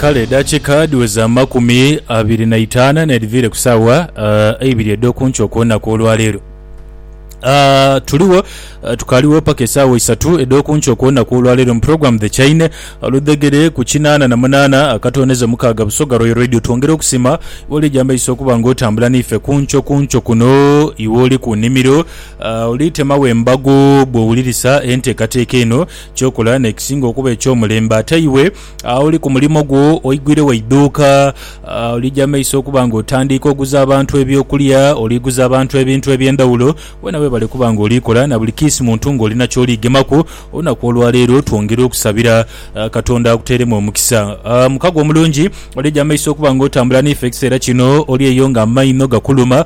Kale edakika dhiweza amakumi abiri na itaana n'edhiviire ku saawa ah, eibiri edh'oku nkyo okw'olunaku olwa leero. Ah, tuligho ah, tukaligho paka esaawa isatu edh'oku nkyo okw'olunaku olwa leero mu puroguramu The Chaine ah, ludhegere ku kinaana na munaana akatooneza mukaaga Busoga Royal Radio. Twongera okusima iwe oli egyamaiso okuba nga otambula n'ife ku nkyo ku nkyo kuno, iwe oli ku nimiro ah, oli temagho embago bw'owulirisa enteekateeka eno. Ky'okola n'ekisinga okuba eky'omulembe. Ate iwe aoli ku mulimo gwo, oigwire wa idhuuka, olija mu maiso okuba ng'otandiika oguza abantu eby'okulya, oli guza abantu ebintu eby'endhawulo. Weena weebale kuba ng'oli kola na buli kiisi muntu ng'oli na ky'oli gemaku. Olunaku olwa leero twongere okusabira Katonda akuteeremu omukisa. Muka gwe omulungi, olija mu maiso okuba ng'otambula n'ife ekiseera kino. Oli eyo ng'amaino gakuluma,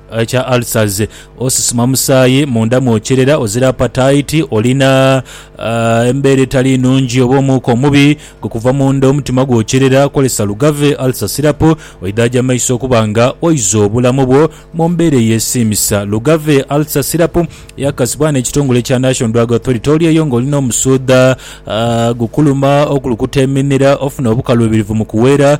Ekya ulcers, osisima musaayi munda mwokyerera, ozira apataiti, olina embeera etali nnungi oba omuuka omubi gwe kuva munda, omutima gwokyerera, kozesa Lugave Ulcer Syrup oidhaaje amaiso okuba nga oiza obulamu bwo mu mbeera eyesiimisa. Lugave Ulcer Syrup yakakasibwa n'ekitongole kya National Drug Authority olyeyo ng'olina omusuudha gukuluma, okulukuta eminira, ofuna obukaluubirivu mu kuweera,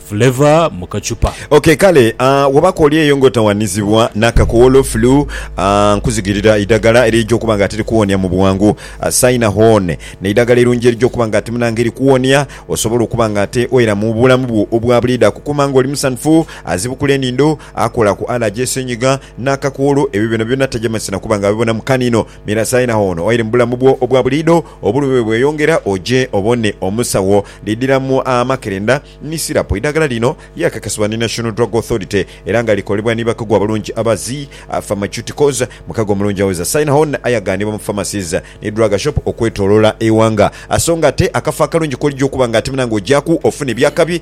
Flavour mu kachupa. Ok kale aah wobaku oli eyo nga otawanizibwa nakakowolo, flu, aah nkuzigirira eidagala erija okuba nga ati likuwonia mubwangu. Saina Horn neidagala erungi erija okuba nga ati munange likuwonia osobole okuba nga ate oera mubulamu bwo obwabuliidho. Akukuma nga oli musanhufu, azibukula enindho, akola ku allergy, esenyiga, nakakowolo ebyo byonabyona taja mazi nakuba nga abibona mukanino. Mira saina ono oire mu bulamu bwo obwa buliidho, obulumi bwe bweyongera, oje obone omusawo. Lidhira mu amakerenda ni sirapu. Eidhagala lino lyakakasibwa ni National Drug Authority era nga likolebwa ni bakugu abalungi aba Zi Pharmaceuticals. Mukago omulungi awoza saina ono aye aganibwa mu pharmacies ni drug shop okwetolola eighanga. So nga ate akafo akalungi kwolija okuba nga ate muna nga ojaku ofuna ebyakabi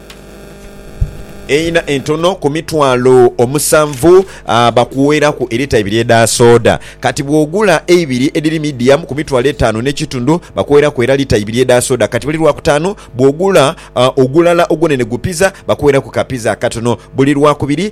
eina entono ku mitwalo omusanvu bakuweraku elita ibiri edha soda. Kati bwogula eibiri edhiri medium ku mitwalo etanu ne kitundhu bakuweraku era lita ibiri edha soda. Kati buli lwakutaanu bwogula ogulala ogwonene gu pizza bakuweraku ka pizza akatono buli lwakubiri.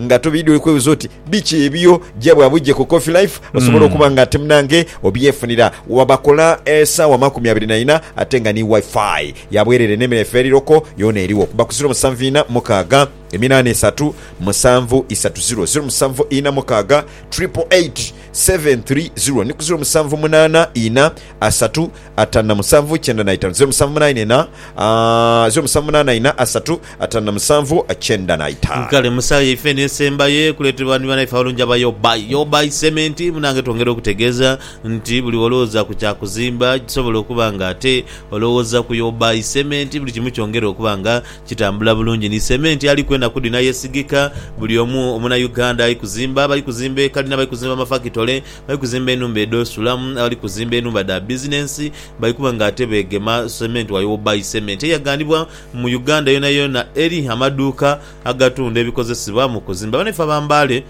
Nga tobeidhwe kwebuza oti biki ebyo, gya bwa bwidhi ku Coffee Life osobole okuba nga ate munange obyefunira wa bakola esaawa amakumi abiri na ina ate nga ni Wi-Fi ya bwerere ne mireefa eri loko yona eriwo kuba ku ziro musanvu ina mukaaga eminana esatu musanvu isatu ziro ziro musanvu ina mukaaga triple eight seven three ziro ni ku ziro musanvu munana ina asatu atanu na musanvu kyenda na itanu ziro musanvu munana ina ziro musanvu munana ina asatu atanu na musanvu kyenda na ita. Kale musaaghe yaife eno esembayo ekuleetebwa ni banaife abalungi aba Your Buy Your Buy Cement. Munange twongere okutegeeza nti buli wolowooza ku kya kuzimba kisobola okuba nga ate olowooza ku Your Buy Cement buli kimu kyongere okuba nga kitambula bulungi ni cement aliku enaku dhino ayesigika buli omu omuna Uganda ayi kuzimba abali kuzimba ekalina abali kuzimba amafakitole bali kuzimba enhumba edh'osulamu, abali kuzimba enhumba dha bizinensi bali kuba ng'ate beegema sementu wali Obuy Cement eyaghanibwa mu Uganda yoonayoona eri amaduuka agatunda ebikozesebwa mu kuzimba. Banaife aba Mbale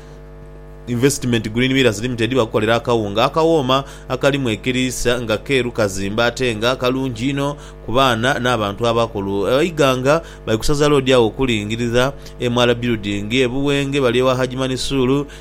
Investment Green Millers Limited bakukolera akawunga akawooma akalimu ekiriisa nga keeru kazimbe ate nga kalungi inho ku baana n'abantu abakulu. Eighanga bali kusaza loodi agho okulingirira MR Building e Buwenge bali ewa Hajji Manisuulu.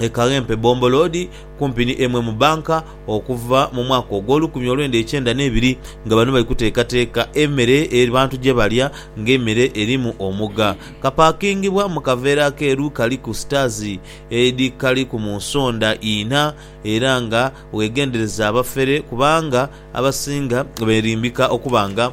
e Kawempe Bomboloodi kumpi ni emu mu banka okuva mu mwaka ogw'olukumi olwenda ekyenda n'ebiri nga bano bali kuteekateeka emere abantu gyebalya nga emere erimu omuga. Kapakingibwa mu kaveera akeeru kaliku sitaazi edhikaliku mu nsonda inha era nga wegendereze abafere kubanga abasinga berimbika okuba nga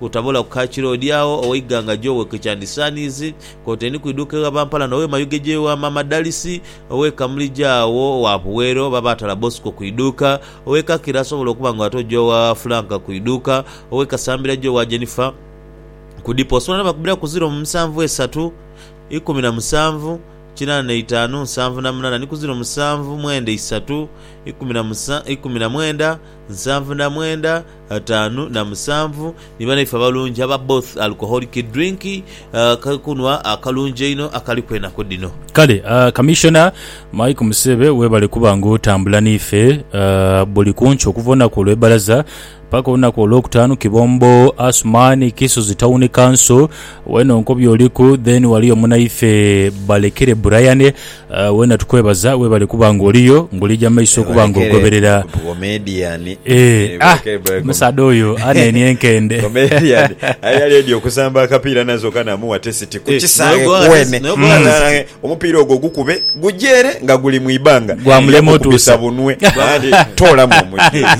Otaboola ku ka kiroodi agho ow'eighanga Joe ke kyandisaaniize koteeni kuiduuka egha Bampala n'ow'e Mayuge Joe wa Maama Dalisi, ow'e Kamulija agho wa Puweero oba Baatala Bosco kuiduuka, ow'e Kakira asobola okuba nga ate oja wa Frank kuiduuka, ow'e Kasambira Joe wa Jennifer ku dipo. Osobola n'obakubira ku ziro mu musanvu esatu, ikumi na musanvu, kinaana na itaanu, nsanvu na munaana ni ku ziro musanvu mwenda isatu, ikumi na musa, ikumi na mwenda, nsanvu na mwenda, Ataanu na musanvu ni banaife abalungi aba both alcoholic drink, akakunhwa akalungi einho akaliku enaku dhino. Kale Commissioner Mike Musebe webale kuba nga otambula nife buli kunkya okuva olunaku olwebalaza paka olunaku olwokutaanu Kibombo Asumani Kisozi Town Council wena onkobye oliku then waliyo munaife Balekere Brian Wena tukwebaza webale kuba nga oliyo nga oli ja maiso okuba nga ogoberera eeh ah omusaadha oyo anenie enkende aye yali edi okusamba akapiira nazo kanamuwa tesiti kukisaghe kuwene omupiira ogwo gukube guje ere nga guli mu ibanga gwamulema otusa bunwe toolamu omugigha.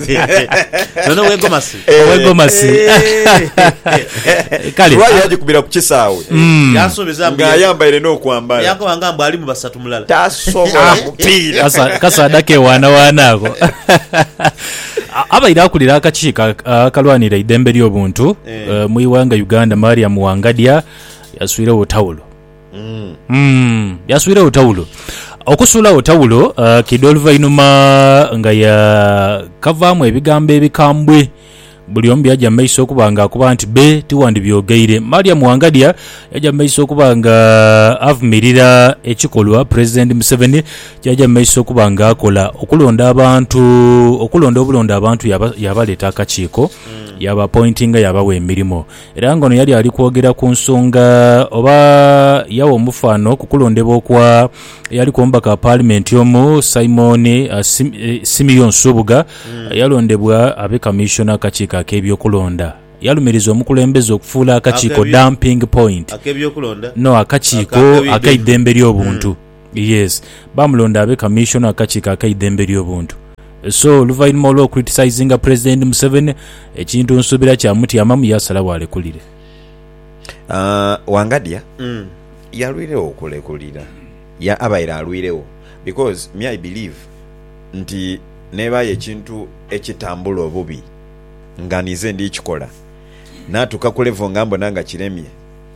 Owe Gomasi. Kale. Lwali yagikubira ku kisaawe Mm. Yansuubiza mbu ye- ng'ayambaire n'okwambala. Yankoba nga mbu alimu basatu mulala. Tasobola mupiira. Kasa- kasaadha kewaanawaana ako A- abaire akulira akakiiko ak- akalwanira eidembe ly'obuntu Eh. eh, mu iwanga uganda mariam wangadya yaswirewo tawulo Yasuiragho tawulo. Okusuulagho tawulo kidha oluvainhuma nga ya kavaamu ebigambo ebikambwe. Buli omu byaja mu maiso okuba nga akoba nti be tiwandibyogeire. Mariam Wangadya yaja mu maiso okuba nga avumirira ekikolwa Pulezidenti Museveni kyaja mu maiso okuba nga akola okulonda abantu okulonda obulonda abantu yabaleeta akakiiko yabapointinga yabawa emirimo. Era nga ono yali ali kwogera ku nsonga oba yagha omufaano ku kulondebwa okwa eyaliku omubaka wa paalimenti omu, Simon Simeon Nsubuga eyalondebwa abe kamiisona akakiiko ak'ebyokulonda, yalumiriza omukulembeze okufuula akakiiko dumping point, no akakiiko ak'eidhembe ly'obuntu. Yes, baamulonda abe Kamiisona w'akakiiko ak'eidembe ly'obuntu. So, oluvainhuma olw'okuritisizinga Pulezidenti Museveni, ekintu nsuubira kyamutyamamu yaasalagho alekulire. Wangadya yalwiregho okulekulira? Yeah, abaire alwiregho because me I believe nti neeba aye ekintu ekitambula obubi nga ninze ndi kikola, naatuuka ku level nga mbona nga kiremye,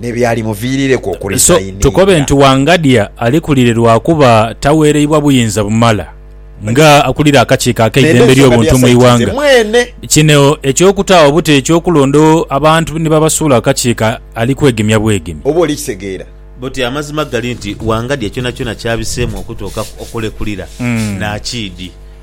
ni byalimuviirireku okuresayininga. So tukobe nti Wangadya alikulire lwa kuba taweereibwa buyinza bumala nga akulira akakiiko ak'eidembe ly'obuntu mu ighanga. Kino eky'okutaagho buti eky'okulondogho abantu ni babasuula ku kakiiko ali kwegemya bwegemye. Oba oli kitegeera? Buti amazima gali nti Wangadya kyonakyona ky'abiseemu okutuukaku okulekulira, naakiidhi.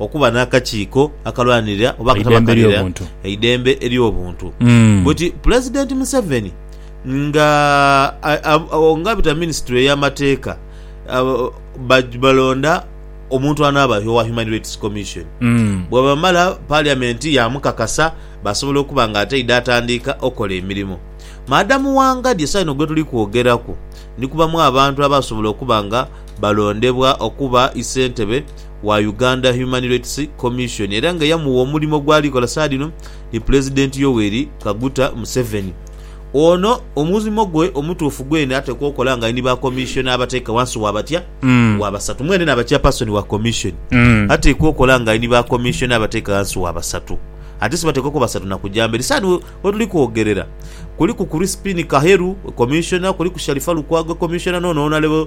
Okuba n'akakiiko akalwanirira oba akatabakalira eidembe ery'obuntu But Pulezidenti Museveni nga abita mu minisitule y'amateeka balonda omuntu anaaba owa Human Rights Commission. Bwebamala Paliyamenti yaamukakasa baasobola okuba nga ateidha atandiika okola emirimo. Madam Wangadya esawa eno gwetuli kwogeraku ni kubamu abantu abaasobola okuba nga balondebwa okuba isentebe wa Uganda Human Rights Commission era nga yamuwa omulimo gwali kola saadhino ni Pulezidenti Yoweri Kaguta Museveni. Ono omulimo gwe omutuufu gwene atekwa okola nga ali ni ba Commissioner abateeka wansi wa batya wa basatu. Mwene naaba Chairperson wa Commission. Atekwa okola nga ali ni ba Commissioner abateeka wansi wa basatu. Ate sibateekwa kuba basatu na kuja mberi. Saadhino wetuli kwogerera kuliku Crispin Kaheru, Commissioner, kuliku Sharifah Lukwago, Commissioner, n'ono wonale.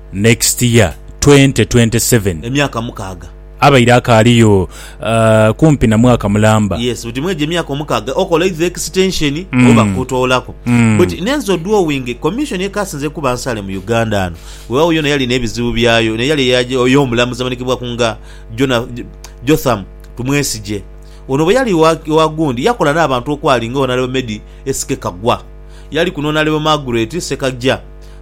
Next year twenty twenty seven. Emyaka mukaaga. Abaire akaaliyo kumpi na mwaka mulamba. Yes buti mwejo emyaka omukaaga okola either extension oba kutoolaku. Buti nenze odwowinge commission ekasinze kuba nsale mu Uganda ano. Wewaawo yona yalina ebizibu byayo naye yale ey'omulamuzi amanhikibwaku nga Jona, Jotham Tumwesigye. Ono bweyali wa gundi yakola n'abantu okwali nga Honourable Meddie SK Kaggwa. Yaliku n'Honourable Margaret Ssekagya.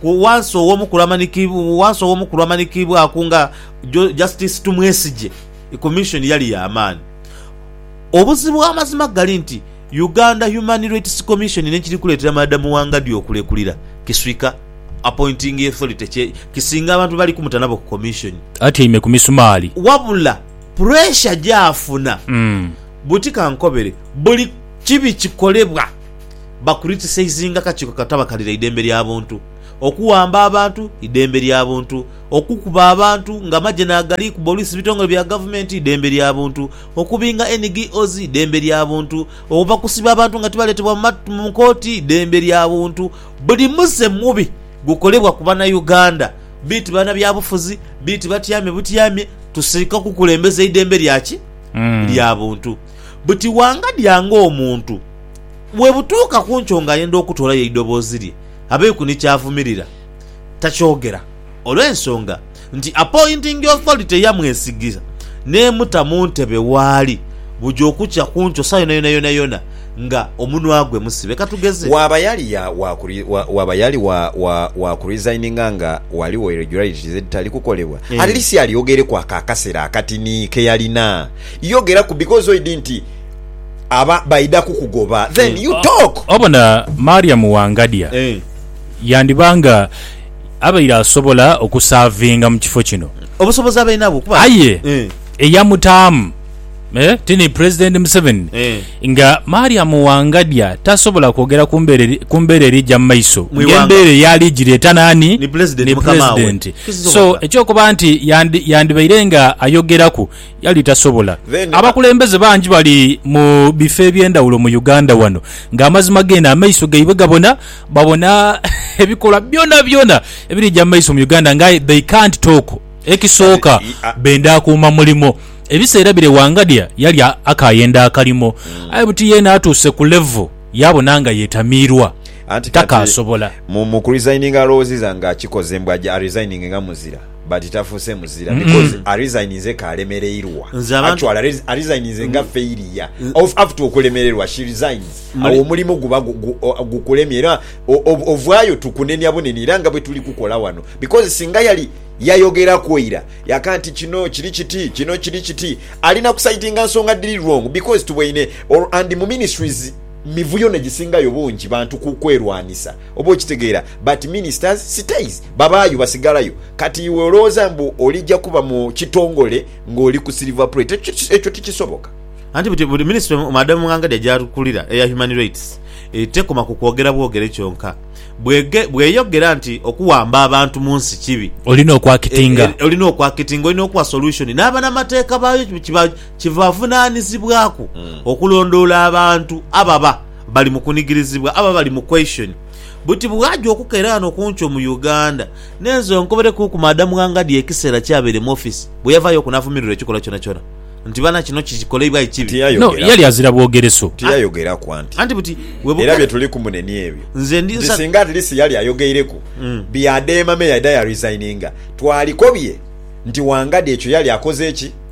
Ku wansi ow'omukulu amanikiibwaku nga Justice Tumwesigye, Commission yali ya maani. Obuzibu amazima gali nti Uganda Human Rights Commission n'ekiri kuleetera Madam Wangadya okulekulira kiswika Appointing Authority kye kisinga abantu be bali kumuta nabo ku Commission. Atyaime ku misumaali. Wabula pressure gy'afuna buti kankobere buli kibi kikolebwa. bakuritisayizinga akakiiko akatabakalira eidembe lya buntu, okuwamba abantu, idembe lya buntu, okukuba abantu nga amagye nagali kuba oluisi bitongole bya gavumenti, idembe lya buntu, okubinga NGOs, idembe lya buntu, obakusiba abantu nga tibaletebwa mu kooti, idembe lya buntu. Buli muze mubi gukolebwa ku banauganda, beti banabyabufuzi, beti batyame butyamye, tusika kukulembeza idembe lya ki? Lya buntu. Buti wangadya nga omuntu Bwe butuuka ku nkyo ng'ayenda okutoolayo eidoboozi lye, abeiku ni ky'avumirira, takyogera olw'ensonga nti appointing authority yamwesigiza n'emuta mu ntebe waali buja okukya ku nkyo saa yoonayona yoonayona nga omunwa gwe musibe. Ka tugeze. Waaba yali ya, wa, wa, waaba yali wa, wa, wa kuresigninga nga ghaligho irregularities edhitali kukolebwa, at least alyogereku ako akasera akatini ke yalina. Yogeraku, because oidhi nti. aba baidha kukugoba then you talk. Obona Mariam Wangadya yandiba nga abaire asobola okusavinga mu kifo kino. Obusobozi abaire nabwo kuba. Aye eyamutaamu ti ni Pulezidenti Museveni nga Mariam Wangadya tasobola kwogera ku mbeera erija mu maiso ng'embeera eyo ali gireeta naani? Ni Pulezidenti. So eky'okuba nti yandibaire nga ayogeraku. yali tasobola. Abakulembeze bangi bali mu bifo eby'endhawulo mu Uganda wano nga amazima geene amaiso gaibwe gabona, babona ebikolwa byonabyona ebirija mu maiso mu Uganda nga aye they can't talk. Ekisooka benda kuuma mulimo. Ebiseera bire Wangadya yali akayenda akalimo aye buti yeene atuuse ku level yabona nga yetamiirwa takaasobola. Anti kati mu kuresigninga alowooziza nga akikoze mbu aje aresigninge nga muzira. But tafuuse muzira because arisigninze ka alemereirwa actually arisigninze nga failure after okulemererwa she resigns awo omulimu guba gukulemye era ovaayo tukunenia bunenia era nga bwetuli kukola wano because singa yali yayogeraku ira yaka nti kino kiri kiti kino kiri kiti alina kusaidinga nsonga dhiri wrong because tuboine and mu ministries mivuyo negisingayo bungi bantu kwerwanisa. Oba okitegeera but ministers stays babaayo basigalayo kati iwe olowooza mbu olija kuba mu kitongole nga oli ku silver plate ekyo ekyo tikisoboka. Anti buti buli ministry madam Mughangade gy'akulira eya Human Rights tekoma ku kwogera bwogere kyonka. Bwege bweyogera nti okuwamba abantu mu nsi kibi. Olina okwakitinga. E, e, olina okwakitinga, olina okuwa solution n'abanamateeka baayo kibavunanizibwaku okulondoola abantu ababa. Bali mu kunigirizibwa abo abali mu question buti bwaja okukera ghano kunkyo mu Uganda nenze onkoberekuku madam Ghangadya ekisera kyabeire mu office bweyavayo ku navumirirwa ekikolwa kyonakyona nti bana kino kikoleibwa aye kibi No, yali azira bwogereso. Tiyayogeraku anti Anti buti era bwebuka byetuliku mune niebyo nze ndi nti nsa singa at least yali ayogeireku bi Adema me yaida ya resigninga twalikobye nti Wangadya ekyo yali akoze ki?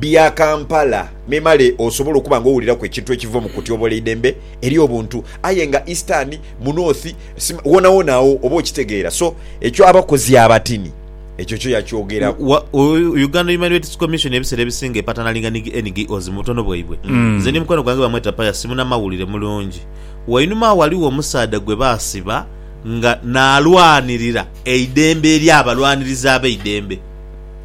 bya Kampala memale osobole okuba nga owuliraku ekintu ekiva mu kutyobola eidembe eri obuntu aye nga Eastern, mu North, Sima, wonawona agho oba okitegeera so ekyo abakozi abatini ekyo kyo yakyogeraku. Wa, u, Uganda Human Rights Commission ebiseera ebisinga epatanalinga ni NGOs mu butono bwaibwe. Nze ni mukwano gwange bamweta Pius simunamawulire mulungi. Wainuma agho ghaligho omusaadha gwe baasiba nga naalwanirira eidembe eri abalwanirizi abeidembe.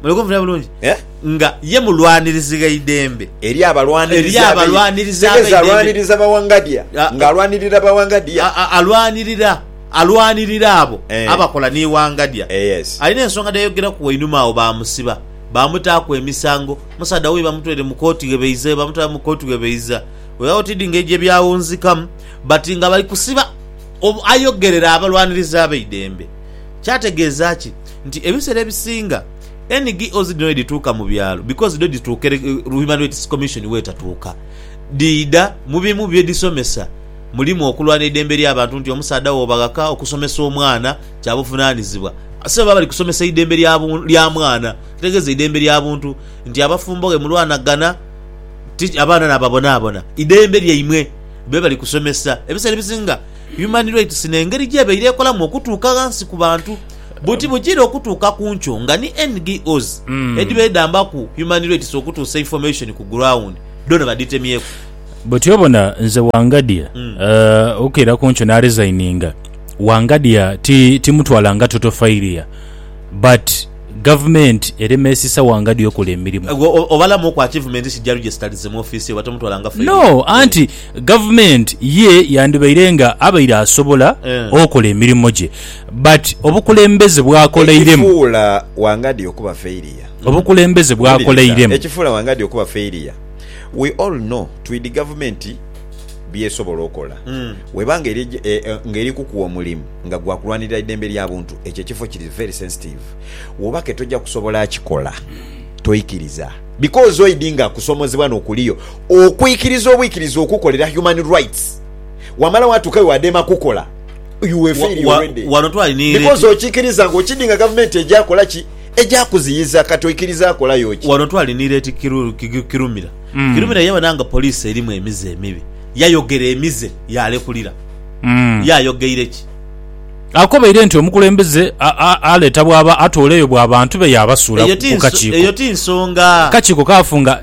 Muli kumpulira bulungi? Eh? Nga ye mulwanirizi gh'eidembe. Eri abalwanirizi Eri abalwanirizi ab'eidembe. Kitegeza alwaniriza ba Wangadya. Nga alwanirira ba Wangadya. Alwanirira, alwanirira abo abakola ni Wangadya. Alina ensonga dh'ayogeraku wainuma agho baamusiba, baamutaaku emisango. Musaadha wuuyo bamutwaire mu kooti ghe baiza, bamutwala mu kooti ghe baiza. Weewaawo tidhi ngeri gye byawunzikamu but nga bali kusiba ayogerera abalwanirizi ab'eidembe. Kyategeeza ki? nti ebisera ebisinga NGOs dhino wedhituuka mu byalo because dho dhituuka ere Human Rights Commission wetatuuka, dhiidha mu bimu byedhisomesa mulimu okulwana eidembe ly'abantu nti omusaadha wooba ghaka okusomesa omwana kya buvunanizibwa. Ate baba bali kusomesa idembe lya lya mwana ekitegeeza eidembe lya buntu nti abafumbo ghe mulwanagana ti abaana nababonaabona idembe lyaimwe bebali kusomesa. Ebisera ebisinga Human Rights n'engeri gyebaire ekolamu okutuuka ghansi ku bantu. buti bujiire okutuuka ku nkyo nga ni NGOs edhiba edhambaku Human Rights okutuusa information ku ground dhoona badhitemyeku. Buti obona nze Wangadya okukeera ku nkyo naresigninga, Wangadya timutwala nga total failure but gavumenti eremesisa Wangadya okola emirimu. Gwe obalamu oku achievements ki jarujestalize mu office ye oba tomutwala nga failure? No anti gavumenti ye yandibaire nga abaire asobola okola emirimo gye. But obukulembeze bw'akoleiremu. Ekifuula Wangadya okuba failure. Obukulembeze bw'akoleiremu. Wuliriza, ekifuula Wangadya okuba failure. We all know twidi gavumenti by'esobola okola. Bw'eba ng'eri kukuwa omulimu nga gwa kulwanirira idembe lya buntu, ekyo ekifo kiri very sensitive. Woba ke toja kusobola kikola, toikiriza. Because oidi nga kusomozebwa n'okuliyo okwikiriza obwikiriza okukolera human rights. Wamala watuuka we wadeema kukola. wano twali because okikiriza nga okidinga gavumenti ejakola ki ejakuziyiza kati oikiriza akolayo ki wano twali ni leti kirumira mm. kirumira yabona nga polisi erimu emize emibi yayogera emize yalekulira mm. yayogeire ki akobeire nti omukulembeze aleeta bwaba atooleyo bwa bantu be yabasuula ku kakiiko eyo ti nsonga kakiiko kafunga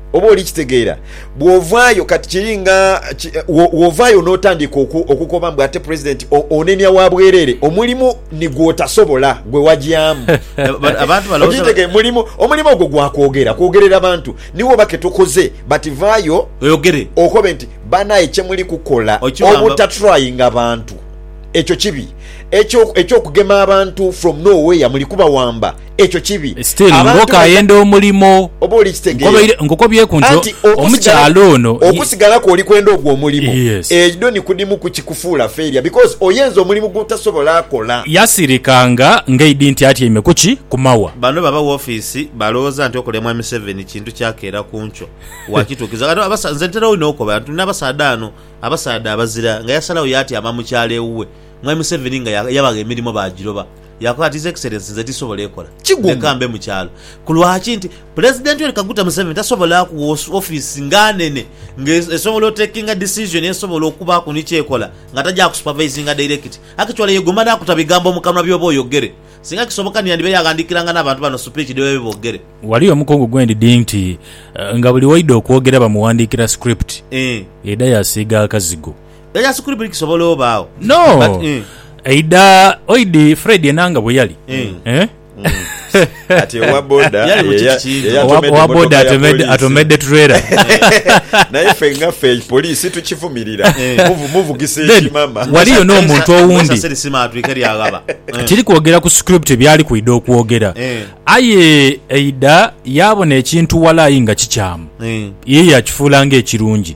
Oba oli kitegeera? Bw'ovaayo kati, kiri nga ki, bw'ovaayo n'otandika oku, okukoba mbu ate Pulezidenti o, onenia wa bwereere, omulimu ni gw'otasobola, gwe wagyamu. Okitegeera? Mulimu, omulimu ogwo gwa kwogera, kwogerera bantu. Niwo oba ke tukoze, but vaayo oyogere, okobe nti, Banaye, kye muli kukola obutatrayinga bantu, ekyo kibi. Eky'o, eky'okugema abantu from nowhere, muli kubawamba. ekyo kibi. Still nga okayenda omulimo nkobaire nkukobyeku nti omukyala ono. Okusigalaku oli kwenda ogwo omulimo edho ni kudimu ku kikufuula failure because oyenze omulimu gwotasobola akola. Yasirika nga ngaidi nti atyaime kuki? Ku mawa. Bano baba wofiisi balowoza nti okulemwa Museveni kintu kya keera ku nkyo. Wakituukiza ghano abasa nze ntera inho okoba nti nabasaadha ano abasaadha abazira nga yasalagho yatyama mukyalo ewuwe Mwami Museveni nga yabagha emirimo bagiroba. Yaakola ati, His Excellency, nze tisobola ekola. Leka mbe mu kyalo. Ku lwaki? Nti, Pulezidenti Yoweri Kaguta Museveni tasobola kuwa ofiisi nga nene nga esobola otekinga decision esobola okubaaku ni ky'ekola nga taja kusupavaizinga dairekiti. Akitwale ye guma n'akuta bigambo mu kanwa by'oba oyogere. Singa kisoboka ni yandibaire aghandiikiranga n'abantu bano sipiiki dhi babaire boogere. Wali omukungu gwe ndidhi nti nga buli w'aidha okwogera bamuwandiikira script, yaidha yaasiiga akazigo. Yayasi kuli buli kisobola obaagho. No. But, eh. Eidha oidhi Fred Enanga bwe yali. Eh. Eh? Kati owa boda Yali mu ye- kiki kintu? ye- Owa- yatomedde Owa boda motoka ya atomedde poliisi. atomedde trailer. naye fe nga fe polisi tukivumirira Muvu- muvugisa Then, ekimama wali- Waliyo n'omuntu owundi. Saseri sima atwike lyaghaba. Eh. Tiri kwogera ku script byali kwidha okwogera. Eh. Aye Eidha yabona ekintu walayi nga kikyamu. Eh. Ye yakifuula ng'ekirungi.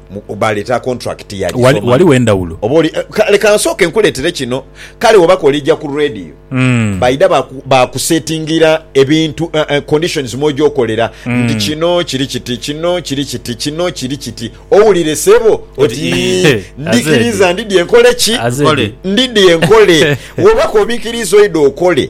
Baleeta kontulakiti ya Gisoma. Ghaligho endhawulo. Oba oli, eh, leka nsooke nkuleetere kino. Kale bw'oba kw'oliija ku rreediyo, mm. baidha baakusetingira ebintu, uh, uh, conditions mw'oja okolera mm. nti kino kiri kiti, kino kiri kiti, kino kiri kiti. Owulire sebo oti ndikiriza ndidye nkole ki? Ndidye nkole. Bw'oba k'obikiriza oidha okole.